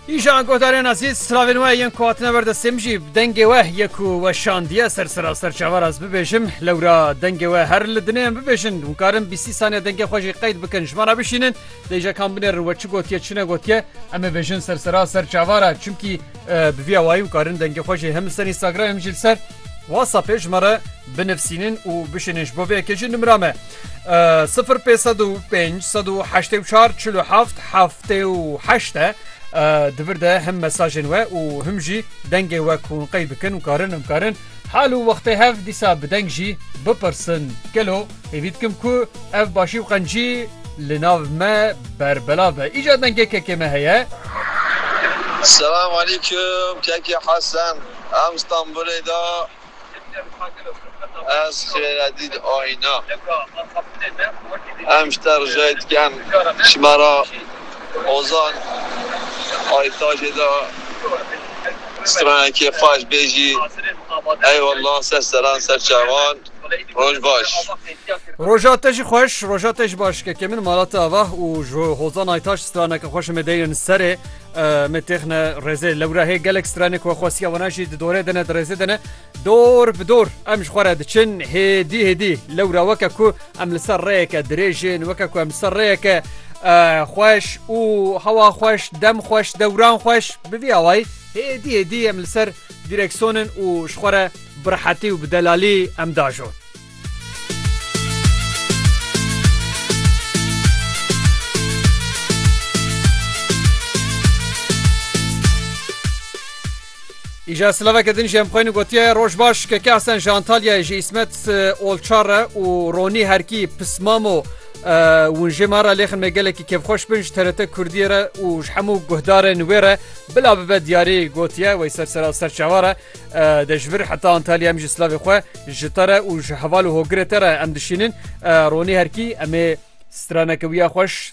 Îşan godarên ez hîs silavên we yên ku hatine ber destê min jî dengê we yek ku we şandiye ser sira ser çavar ez bibêjim lewra dengê we her li dinê em bibêjin hûn karin bîsî saniye dengê xwe jî qeyd bikin ji me re bişînin dêjekan binê ri we çi gotiye çi negotiye em ê bêjin ser sira ser çavara çimkî bi vîya wayî hûn karin dengê xwe jî hem li ser Instagram hem jî li ser Whatsappê ji me re binivsînin û bişînin ji bo vê yekê jî nimra me sifir pê sed û pênc sed û heştê û çar çil û heft heftê û heşt e di vir de him mesajên we û him jî dengê we ku hûn qey bikin û karin him karin hal û wextê hev dîsa bi deng jî bipirsin gelo hêvî dikim ku ev başî û qencî li nav me berbelav be îcar dengê kekê me heye. Selam aleykum keke Hesen. Em Stenbolê de ez xêre dît ayna. Em ji te ricayê dikin ji me re Ozan Aytajê de stranekê xweş bêjî. Eyewallah ser seran ser çavan. Roj baş. Roja te jî xweş, roja te jî baş kekê min. Mala te ava û ji Hozan Aytaş straneke xweş em ê deynin serê. Me têxne rêzê lewra hê gelek stranê ku xwestiya wana jî di dorê dene di rêzê dene dor bi dor em ji xwe re diçin hêdî hêdî lewra weke ku em li ser rêyeke dirêjin weke ku em li ser rêyeke xweş û hewa xweş dem xweş dewran xweş bi vî awayî hêdî hêdî em li ser dîreksonên û ji xwe re bi rehetî û bi delalî em dajon. Îja silaveke din jî em xwên gotiye roj baş keke esen ji Antalyayê ji îsmet olçare û ronî herkî pismamo hûn jê me re lêxin me gelekî kevxweş bin ji terete Kurdiyê re û ji hemû guhdarên wê re bila bibe diyarî gotiye wey ser sera serçava re Dejbir heta Antalya em ji slavê xwe ji te re û ji heval û hogirê te re em dişînin. Ronî herkî em ê straneke wiya xweş